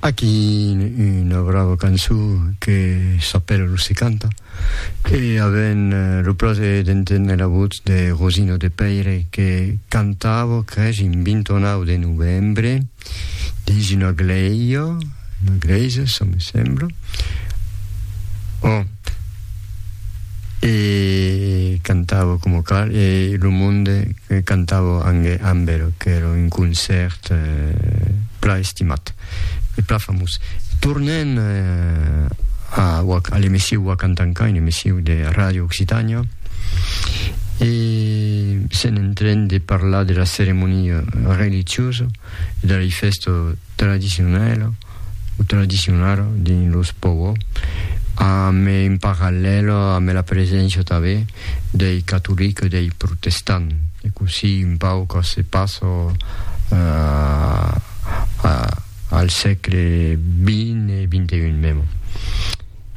Aquí una brava cançó que s'apèla Lo se canta e avèm lo plaser d'enténer la votz de Rosino de Pèire que cantava, cresh, un 29 de novembre. dins una glèia, una glèisa, ça me sembla. Oh, e cantava com cal, e lo monde cantava amb el, que era un concèrt eh, pla estimat e pla famós. Tornèn eh, a, a l'emissiu Wakantankain, emissiu de Radio Occitània, e sèn en tren de parlar de la ceremonia religiosa e de la fèsta tradicionala o tradicionara dins los Povo, amb en parallèl amb la preséncia tanben dei catolics e dei protestants, e cossí un pauc se passa a al sègle xx e xxi mèmo.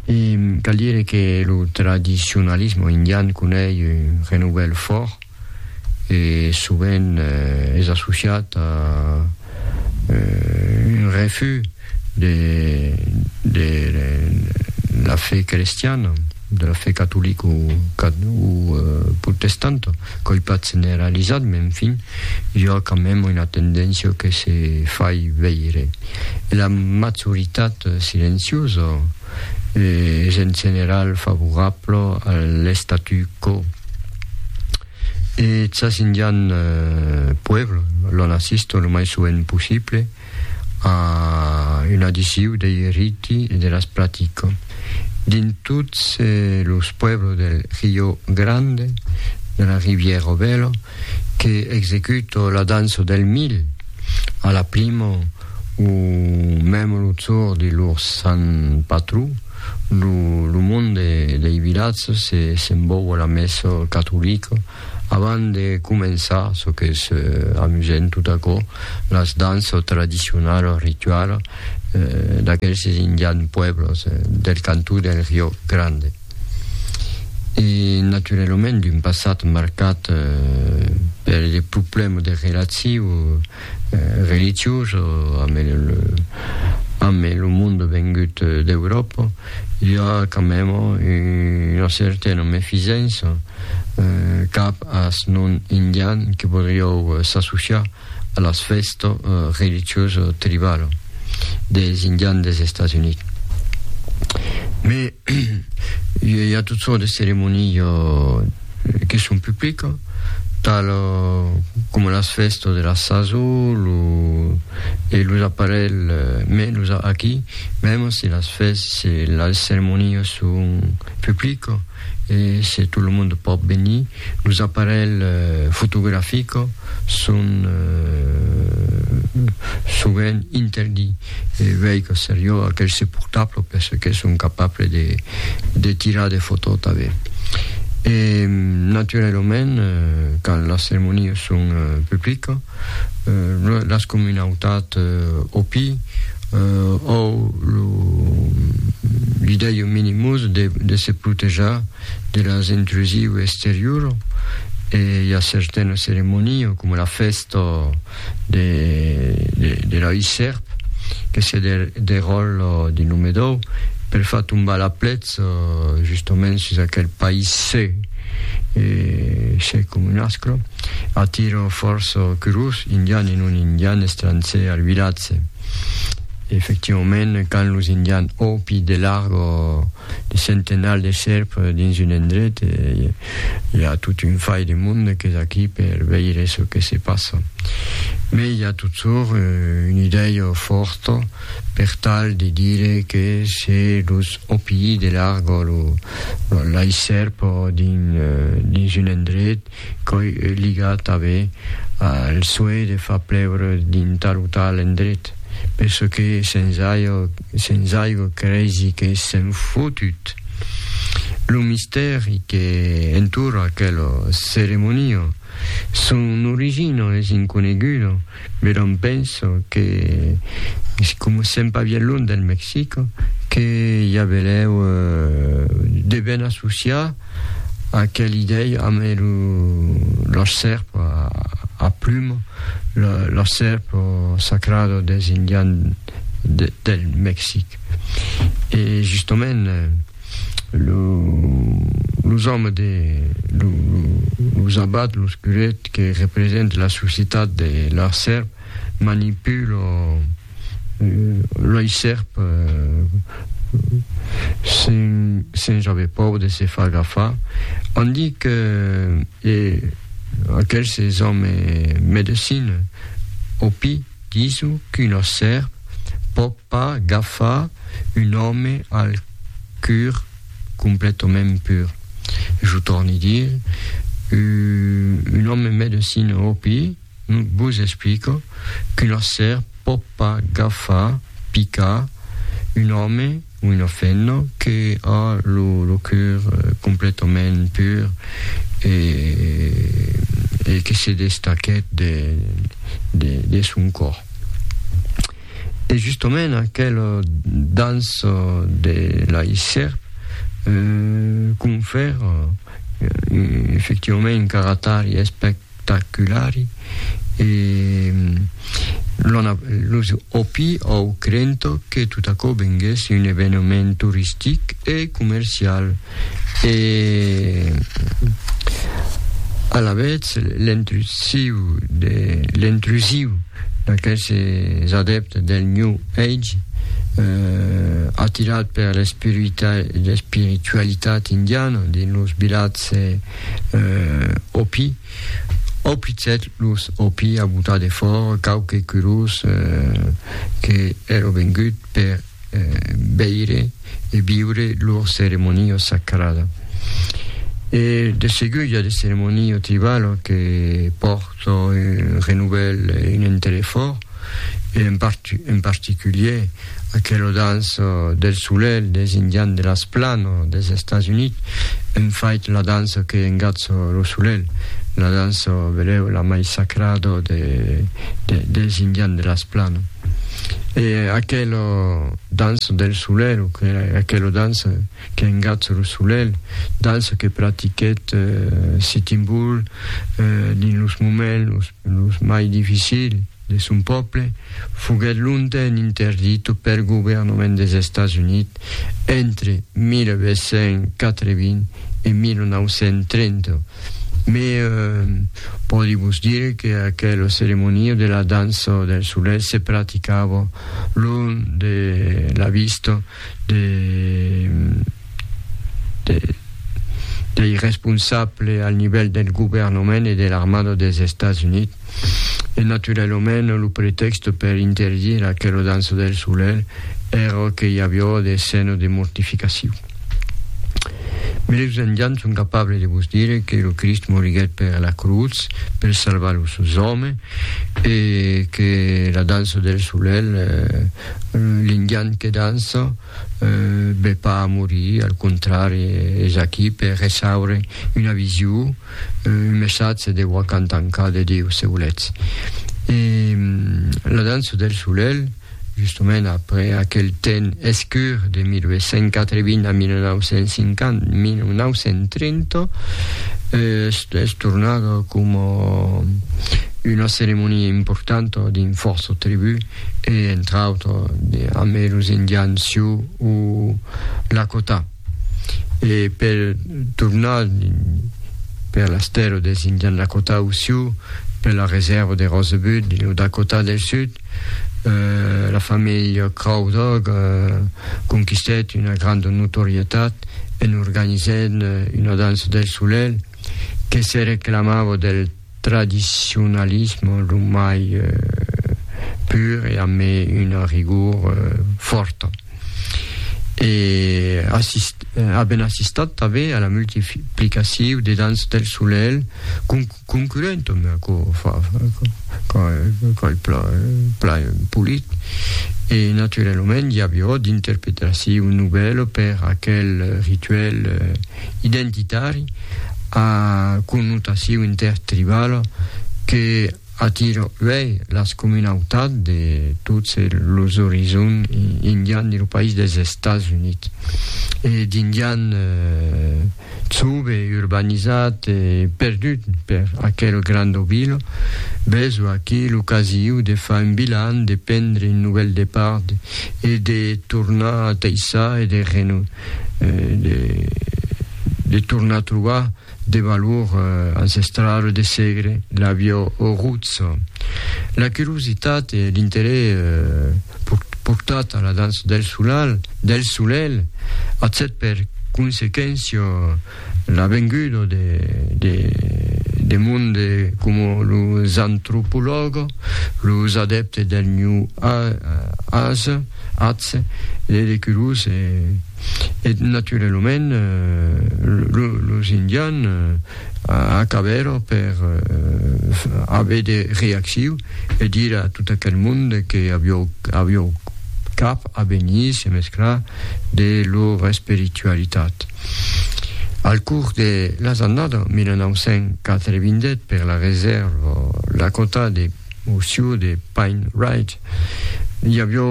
E cal dire que lo tradicionalisme indian conei un renouvèl fòrt e sovent es associat a un refús de la fe crestiana. de la fe catolic o protestant, qu'oi pas generalizat, mai enfin, i a quand même una tendéncia que se fai veire. E la majoritat silenciosa es en general favorabla a l'statu quo. E chas indian puebl, l'on assista lo mai sovent possible, a un adiciu dei riti e de las pratico. Dins tots los pueblo del Rio Grande, de la Riviero Velo, que executo la danço del mil, a la primo o memo lo zor de lor sant patró, lo monde dei vilatzo se s'embòua la messo catolico, Avant de començar, çò qu'es amusent, tot aquò, las danças tradicionalas, los rituals d'aquelses indians pueblos del cantó del Rio Grande. E naturalament d'un passat marcat per de problèmas de relaciu, religiós amb lo monde vengut d'Euròpa, i a quand même una certaina mefisença cap as non indian que podriou s'associar a las fèstas religiosas tribalas des indians des Estats Units. Mai i a tot sòrt de ceremonias question publica, tal coma las fèstas de la saso lo, e los aparelhs menus aquí, mèma se las fèstas, se las ceremonias son publicas e se tot lo monde pòt venir, los aparelhs fotografica son sovent interdits. e veic au seriós aquel se portable per ce que son capable de de tirar de fotò tanben e naturalament quand las ceremonias son publica las comunautat opi au lo li dei un minimus de de se protejar de las intrusiu exterior e i a certana ceremonia coma la fèsta de l'òi sèrp que se deròl de Numedòu per far tombar la plètz justoments sus aquel país se se com un asclo atiro fòrç curós indian e non indian estranser al vilatge efectivament quand los indian òpi de largo de centenals de sèrp dins un endret e i a tot un fai de monde qu'es aquí per veire çò que se passa. Mai i a totjorn una idèia fòrta per tal de dire que se los OPI de larga lo laissèrp dins un endret Qu'òi ligat avé al soeih de far plèure d'un tal o tal endret, per çò que sens aigo creisi que s'en fotut. Lo mistèri que entoura aquela ceremonia, son origina es inconeguda. Me dont penso que si coma sèm pas bien lunh del Mexic, que i a belèu de ben associar aquel idei amb los sèrp a pluma, los sèrp sacrados dels Indians del Mexic. E justament. los òmes de los abats, los curets que represente la societat de lor sèrp manipulent loi sèrp sens aver paur de se far agafar. On di que aquel se zòme medecina, opi, Disu qu'una sèrp pòt pas gafar un òme al cur completament pur. Jo torni dir, un òme medecina òpi vos explica qu'una sèrp pòt pas gafar, picar, un òme, Una femna que a lo cœur completament pur e que se destaquèt de son còr. E justament aquela dança de lai sèrp confèra efectivament un caratari aspèct espectaculari e los òpi au crento que tot aquò venguèsse un eveniment toristic e comercial e alavetz l'intrusiu d'aqueses adèptes del New Age atirats per l'espiritualitat indiana dins los vilatges eh, òpi, òplitsèt los òpi a botar de fòra quauque curós eh, que èra vengut per eh, veire e viure lor ceremonia sacrada. E de segur i a de ceremonia tribala que pòrta un renouvèl e un interès fòrt, e en, part, en particulier Aquelo dans del solelh des indians de las plano des Estats Units en fait la dança que engatz lo solelh, la dança, velèu, la mai sacrada de, de, des indians de las plano. E aquelo dança del solelh, o que, aquelo dança que engatz lo solelh, dança que pratiquèt eh, Sitting Bull eh, dins los moments los, los mai dificils, de son pòble foguèt longtemps interdito pel governament des Estats Units entre 1880 e 1930, mai pòdi vos dire que aquela ceremonia de la dança del solelh se praticava long de la vista de dei responsable al nivèl del governament e de l'armada dels Estats Units e naturalament lo pretèxte per interdir aquela dança del solelh èra que i aviá de scènas de mortificacion. Meus engians son capable de vos dire que lo Crist moriguèt per la crutz per salvar los seus òmes e que la dança del solelh, eh, l'indian que dança, Be pas a morir, al contrari, es aquí per ressaure una vision, un messatge de Wakantanka, de Dieu, se voletz. E La dança del solelh, justament après aquel temps escur de 1880 a 1950, 1930, es tornada coma una ceremonia importanta dins fòrça tribus, e entre autres de, amb los Indians Sioux o Lakota. E per tornar per las terres des Indians Lakota o Sioux, per la reserva de Rosebud, lo Dakota del Sud, eh, la familha Crow Dog eh, conquistèt una granda notorietat en organizènt una dança del solelh que se reclamava del tradicionalisme lo mai pur e amé una rigur fòrta. E assist, aben assistat tanbé a la multiplicaciu de dans del solelh con, concurrent amb aquò fa, qual pla, pla polit. E naturalament i avió d'interpretaciu novèl per aquel rituèl, identitari a connotacion intertribala que atira uèi las comunautats de tots los orizons indians dins lo país dels Estats Units e d'indians sobe urbanizats e perduts per aquela granda vila besonh a qui l'ocasiu de far un bilan, de prendre un novèl depart e de tornar a teissar e de de tornar trobar de valor ancestrale de segre la bio roots la curiositat e l'interès portat a la dança del solal del solel a cet per consequéncia La venguda de monde coma los antropològas, los adèptes del New Age, de Decurus e naturalament los Indians acabèron per aver de reacciu e dire a tot aquel monde que aviá cap a venir se mesclar de lor espiritualitat. Al curs de las annada 1988 per la resèrva Lakota de Horseshoe de Pine Ridge, i avió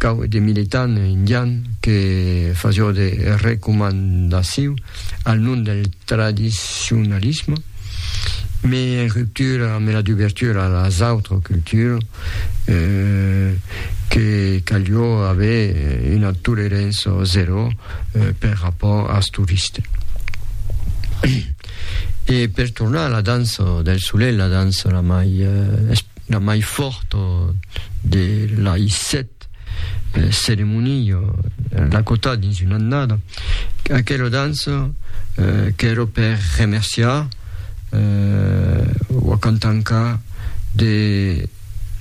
cau de militant indian que fasió de recomandaciu al nom del tradicionalisme, me ruptura, me la dubertura a las autres cultures, euh, que calió aver una tolerança zero euh, per rapport als turistes. E per tornar a la dança del soleil, la dança la mai, euh, la mai forta de la I7, Cette ceremonia l'acota dins una annada aquela dança qu'èra per remerciar ua cantanca de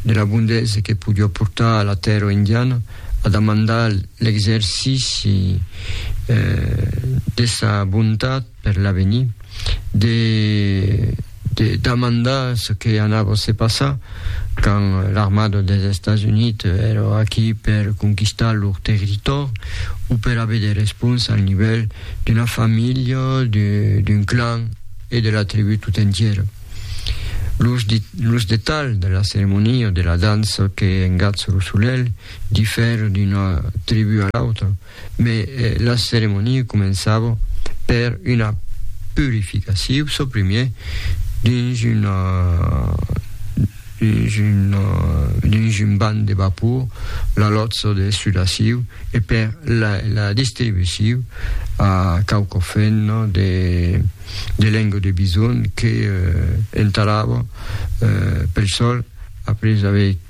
de la bondesa que podiá portar a la tèrra indiana a demandar l'exercici de sa bontat per l'avenir, de damandar çò que anava se passar quand l'armada dels Estats Units èra aquí per conquistar lor territòri o per aver de respons al nivèl d'una familha, d'un clan e de la tribú tot entièra. Los detalhs de la ceremonia de la dança que engatz lo solelh difera d'una tribú a l'autra. Mes la ceremonia començava per una purificaciu çò primier dins una dins una dins un banh de vapor la lotza de sudaciu e per la la distribuciu a quauqua femna de de lenga de bison que entarava pel sòl après aver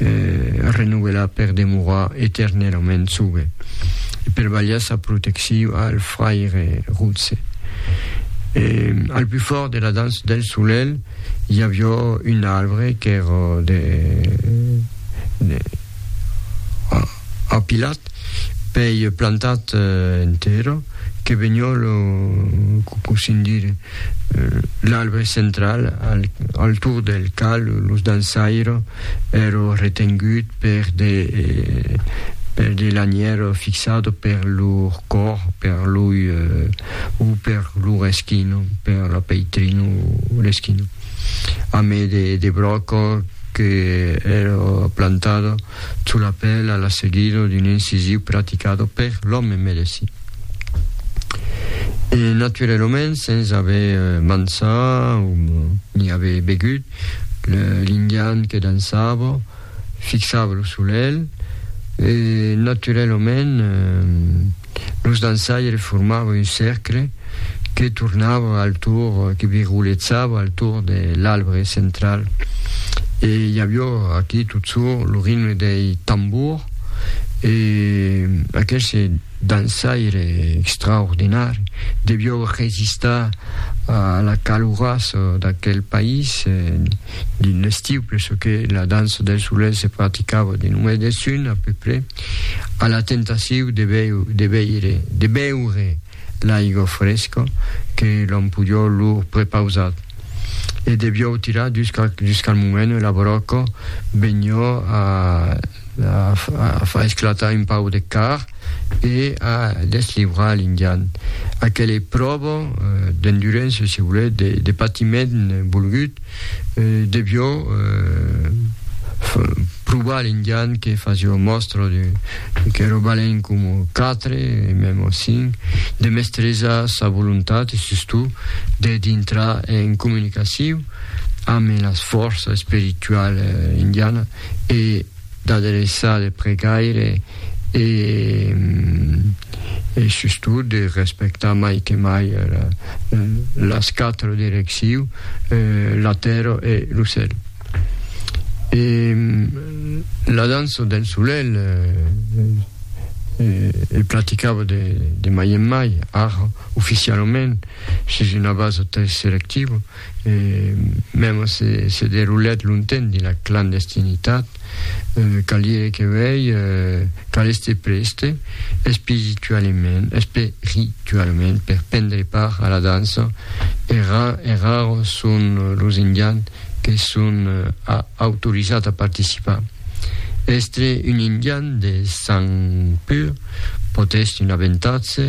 renovelar per demorar eternelament sogue e per balhar sa protecciu al fraire rotse. E, al plus fort de la danç del solelh, i avió un arbre qu'èra de, de apilat pei plantat en tera que vegnon lo cosin dire l'arbre central al tour del cal los dansaires ero retengut per de per de lanier fixat per lor cor per loi o per lor eschino per la peitrina o l'eschino a me de de bròco que ero plantat Çò l'apèla la seguida d'un incisiu praticado per l'òme medesí. E naturelament, sens aver mançat o ni aver begut, l'indian que dançava fixava lo solelh e naturelament, Los dançaires formava un cercle que tornava al tour, que virguletzava al tour de l'albre central e i avió aquí totsur lo ritme dei tambours e aqueste dançaire extraordinari devió resistar a la caloras d'aquel país dins l'estiu perçò que la dança dels solets se practicava dins lo mes de sun a peu près. A la tentaciu de veire, de beure l'aigua fresca que l'Ampulhò lor prepausat. E devió tirar jusqu'al moment ua broca venió a far esclatar un pau de car e a deslivrar l'Indian. Aquela pròva d'endurença, se volèt, de patiment volgut, devió provar l'indian que fasió mòstra que robalèn com quatre e mèm o cinc de mestresa sa volontat e sustot de dintrar en comunicaciu amb las fòrça espirituala indiana e D'adreçar de pregaire e, e sustot, de respectar mai que mai las quatro direcciu, la tèrra e lo cèl. E la dança del solelh e praticava de, de mai en mai, ara, oficialament, sus una basa très selectiva. E mema se se derulèt longtemps dins la clandestinitat, cal dire que uèi cal èster prèste espiritualament, espiritualament per prendre part a la dança e raros son los indians que son autorizats a participar. Èstre un indian de sang pur pòt èstre un avantatge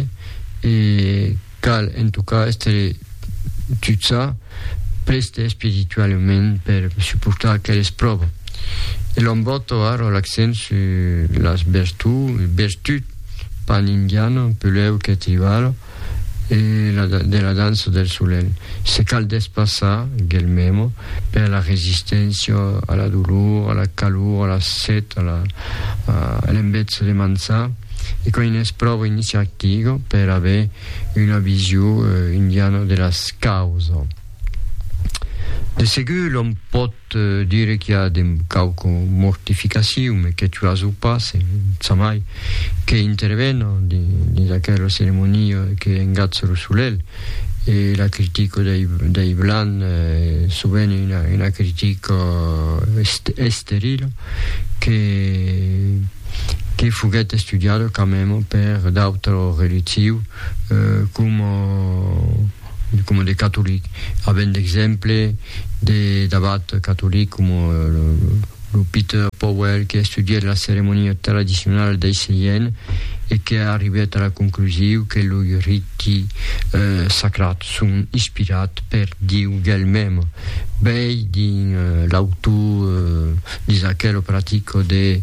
e Cal en tot cas èstre tutsa prèste espiritualament per suportar aqueles pròvas. E l'òm vòl torrar l'accent sus las vertuts, bertut, pan indiana, peleu qu'eth tribala, e de la dança del solelh. Se cal despassar, guelmemo, per la resisténcia a la dolor, a la calor, a la set, a l'enveja de manjar. E quand n'es pròva iniciativa per aver una vision indiana de las causa. De segur l'òm pòt dire qu'i a de quauqua mortificacion, me que tu as o pas, e ça mai, que intervena dins aquela ceremonia que engatza lo solelh, e la critica dei blancs sovent es una critica esterila, que que foguèt estudiada quand même per d'autres religius coma coma de catolics avèm d'exemple de d'abat catolic coma lo Peter Powell que estudièt la ceremonia tradicionala dei Seièn e que arribèt a la conclusiu que loi rit tèxti sacrats son inspirats per Dieu d'el mème, bèi dins l'autor d'Isaquel o pratico de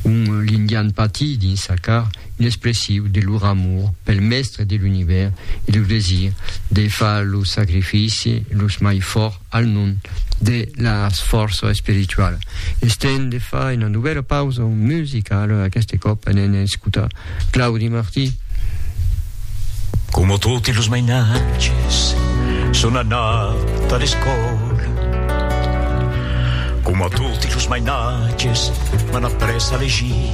On l'Indian patit dins sa car, inexpressiu de lor amor pel Mèstre de l'Univèrs e lo desir de far lo sacrifici los mai fòrt al nom de las fòrça espirituala. Estent de far una novèla pausa musicala, aqueste còp anem escutar Claudi Martí. Coma toti los mainatges, son anat a l'escòla. Coma toti los mainatges, m'an après a legir.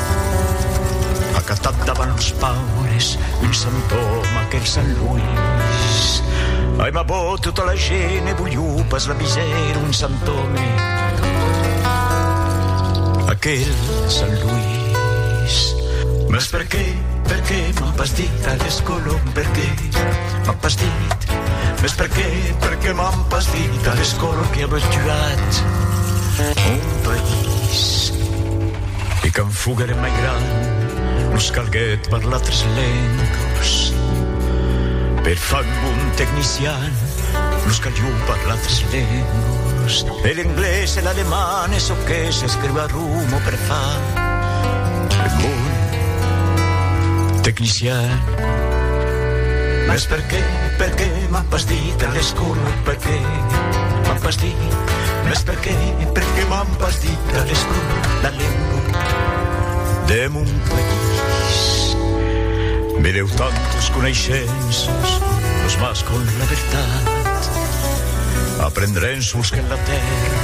Acatat davant los paures, un sant òme, aquel sant Luís. Aimabò tota la gent e volió pas la miser, un sant òme, aquel sant Luís. Mas per qué, per qué m'an pas dit aquel colom, per qué m'an pas dit? Mas per qué, per qué m'an pas dit aquel colom qui a tuat mon país? E quand foguèrem mai gran, nos calguèt parlar tres lengas. Per far un bon tecnician, nos calió parlar tres lengas. E l'englés e l'aleman e çò que s'escriu a Roma per far un bon tecnician. Mas per qué, per qué m'as pas dit a l'escola per qué m'as pas dit, mas per Perqué, perqué m'an pas dit la lestona, la lengua de mon país. Me deu tantes coneishences, los mas con la vertat. Aprendrem sols que la terra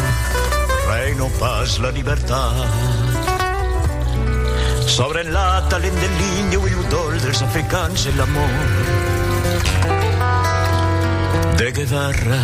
reino pas la libertat. Sobre la talent de l'Inde o l'udol dels africans e l'amor de guevarra.